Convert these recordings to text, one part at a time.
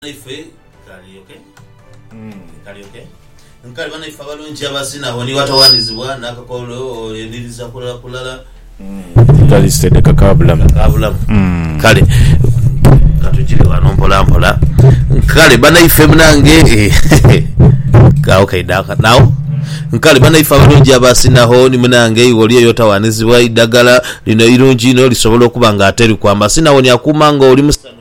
Banaife kalyoke kalyoke nkali banaife abalungi abazina awo ni watawanizibwa n'akakololo eniriza kulala kulala edhitali steady kakaabulamu kakaabulamu. Kale katujire wano mpola mpola nkale banaife munange eeh agho kaidha akanagho nkale banaife abalungi abazina awo ni munange iwe oli eyo otawanizibwa eidhagala lino irungi inho lisobola okuba nga ateriku amazina awo ni akuuma nga oli musanhufu.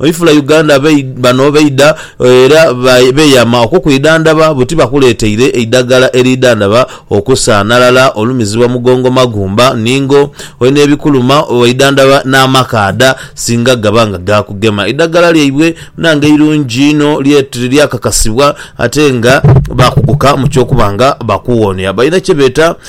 Oifula Uganda bano baidha era beeyama okukwidhandhaba buti bakuleeteire eidhaggala eriidhandhaba okusaanhalala, olumizibwa mugongo magumba, ningo, oine ebikuluma, waidhandhaba n'amakaadha singa gaba nga gaakugema. Eidhaggala lyaibwe bnange irungi inho lyakakasibwa ate nga baakuguka mu ky'okuba nga bakuwonia. Balina kye beeta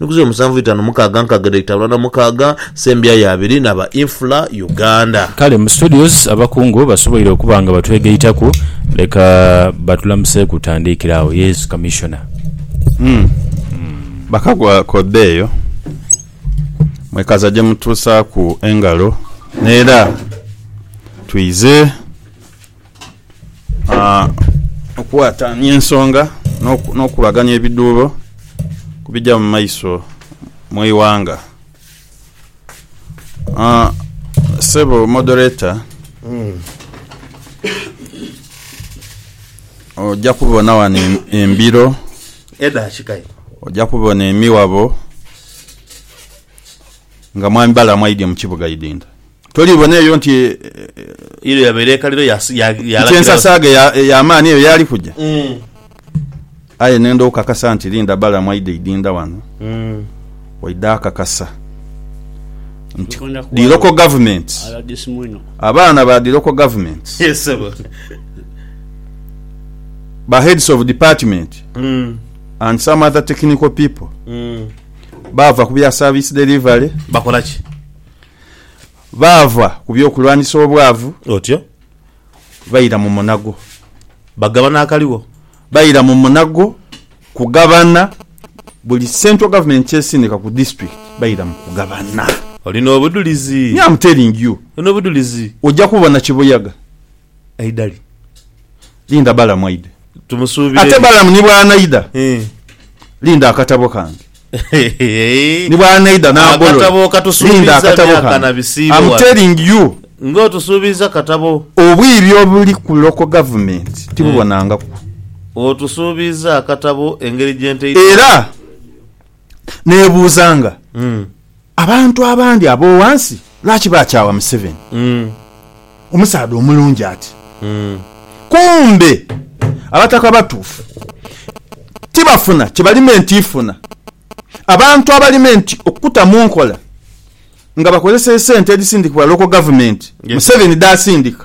Nkuze musanvu itanu mukaaga nkaaga dha itabula na mukaaga sembya ya abiri na ba Infra Uganda. Kale mu studios abakungu basoboire okuba nga batwegaitaku leka batulamuseeku tandiikira agho Yesu Commissioner. Bakagwa k'odha eyo, mwekaza gye mutuusaaku engalo n'era twize. Okuwatanya ensonga n'okukubaganya ebidhuubo ku bija mu maiso mu ighanga. Ssebo Moderator, oja kubona ghano embiro, oja kubona emiwabo nga mwami Balaam aidye mu kibuga Idinda. Tolibona eyo nti Eyo yabeera ekaliro ya, ya, nti yalagira. ensasaaga eya- ey'amaani eyo yaali kuja? Mm, Aye nenda okukakasa nti Linda Balaam aidha idinda wano, mm. waidha akakasa nti Katonda ku the local government, RDC mwino. abaana ba the local government, Yes, sebo. ba heads of department Mm, and some other technical people mm. baava ku bya service delivery Bakola ki? Baava ku by'okulwanisa obwavu. Otyo. Baira mu munago. Bagabana akaligho. Baira mu munago kugabana. Buli Central Government ky'esindika ku District baira mu kugabana. Olina obudhulizi. Me am telling you. Olina obudhulizi. Oja kubona kibuyaga. Aidali. Linda Balamu aidhe. Tumusuubire. Ate Balamu ni bw'anaidha, linda akatabo kange. Ni bw'anaidha n'agolola, linda akatabo kange. Am telling you. Nga otusuubiiza katabo. Obwire obuli ku local government tibubonangaku. Otusuubiiza akatabo engeri gye ntaidwamu. Era. Nebuuza nga abantu abandi abowansi lwaki bakyawa Museveni omusaadha omulungi ati kumbe abataka batuufu tibafuna kyebali meant ifuna abantu abali meant okuta munkola nga bakozesa esente edhisindikibwa local government Museveni dhasindika.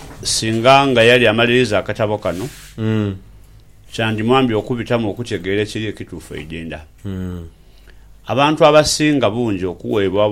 Singa nga yali amaliriza akatabo kano, kyandimwambye okubitamu okutegeera ekiri ekituufu eidinda. Abantu abasinga bungi okuweebwa